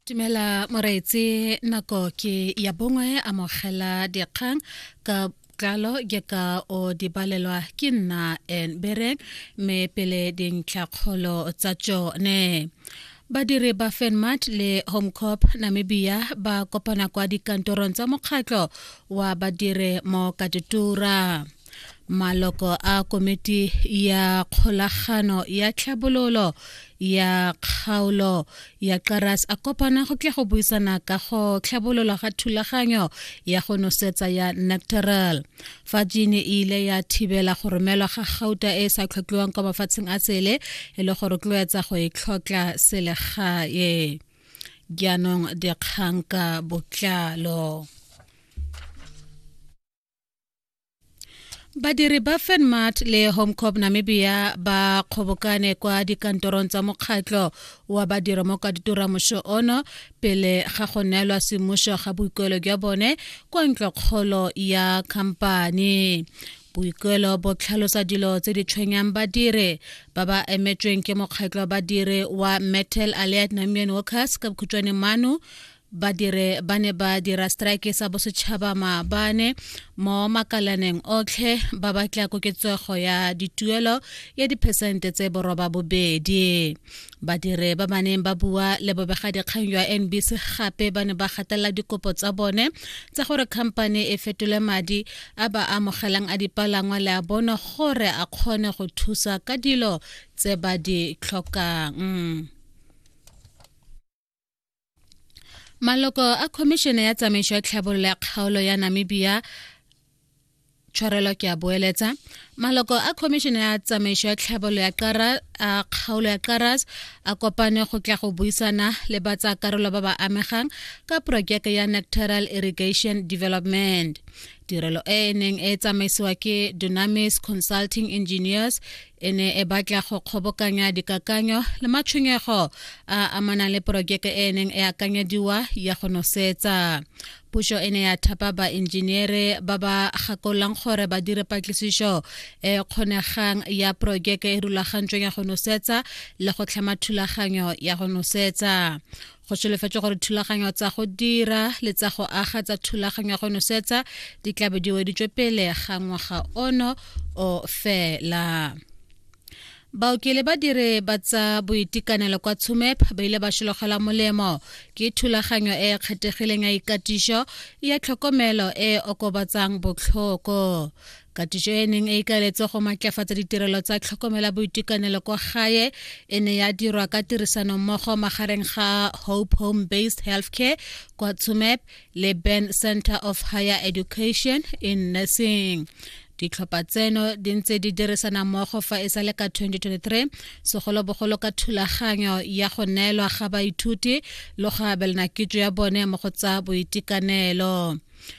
Tumela Moreetse nako ke ya bongwe amogela dikgang ka tlalo ke ka o di balelwa ke nna en bereng me pele dintlhakgolo tsa tsone badiri ba fenmat le homecorp namibia ba kopana kwa dikantorong tsa mokgatlho wa badire mo katutura maloko a komiti ya kgolagano ya tlhabololo ya kgaolo ya qaras a kopana go tla go buisana ka go tlhabolola ga thulaganyo ya go nosetsa ya nectoral fa jine e ile ya thibela go romelwa ga gauta e e sa tlhotlhiwang kwa mafatsheng a tsele e le go rotloetsa go e tlhotlha selegae jaanong dikgang ka botlalo badiri ba fenmart le homecorp namibia ba kgobokane kwa dikantorong tsa mokgatlho wa badiro mo kaditura moso ono pele ga go neelwa semmuso ga boikuelo jwa bone kwa ntlokgolo ya khamphani boikuelo bo tlhalosa dilo tse di tshwenyang badire ba ba emetsweng ke mokgatlho wa badire wa metal allied namian workers ka bokhutshwane mano badire ba ne ba dira strike sa bosetšhaba maabane mo makalaneng otlhe ba batla koketsego ya dituelo ya diphesente tse boroba bobedi badire ba baneng ba bua le bobegadikgang jwa nbc gape ba ne ba gatelela dikopo tsa bone tsa gore khamphane e fetole madi a ba amogelang a dipalangwa le a bone gore a kgone go thusa ka dilo tse ba di tlhokang maloko a khomišene ya tsamaiso ya tlhabololo ya kgaolo ya namibia tshwarelo ke a boeletsa maloko a khomišene ya tsamaiso ya tlhabololo ya qara a kgaolo ya qaras a kopane go tla go buisana le ba tsa karolo ba ba amegang ka porojeke ya nectoral irrigation development tirelo e e neng e tsamaisiwa ke dunamis consulting engineers e ne e batla go kgobokanya dikakanyo le matshwenyego a amanang le porojeke e neng e akanyediwa ya go nosetsa puso e ne ya thapa baenjiniere ba ba gakolang gore ba dire patlisiso e kgonegang ya porojeke e rulagantsweng ya go nosetsa le go tlhama thulaganyo ya go nosetsa go solofetswe gore thulaganyo tsa go dira le tsa go aga tsa thulaganyo ya go nosetsa di tlabe di weditswe pele ga ngwaga ono o fela baoki le badiri ba tsa boitekanelo kwa tshumep ba ile ba šologela molemo ke thulaganyo e e kgethegileng ya ikatišo ya tlhokomelo e e okobatsang botlhoko katiso e neng e ikaeletse go maatlafatsa ditirelo tsa tlhokomela boitekanelo kwa gae e ne ya dirwa ka tirisano mmogo magareng ga hope home based healthcare kwa tsumep le ben center of higher education in nursing ditlhopha tseno di ntse di dirisana mmogo fa e sa le ka 2023 segolobogolo ka thulaganyo ya go neelwa ga baithuti le go abelana kitso ya bone mo go tsa boitekanelo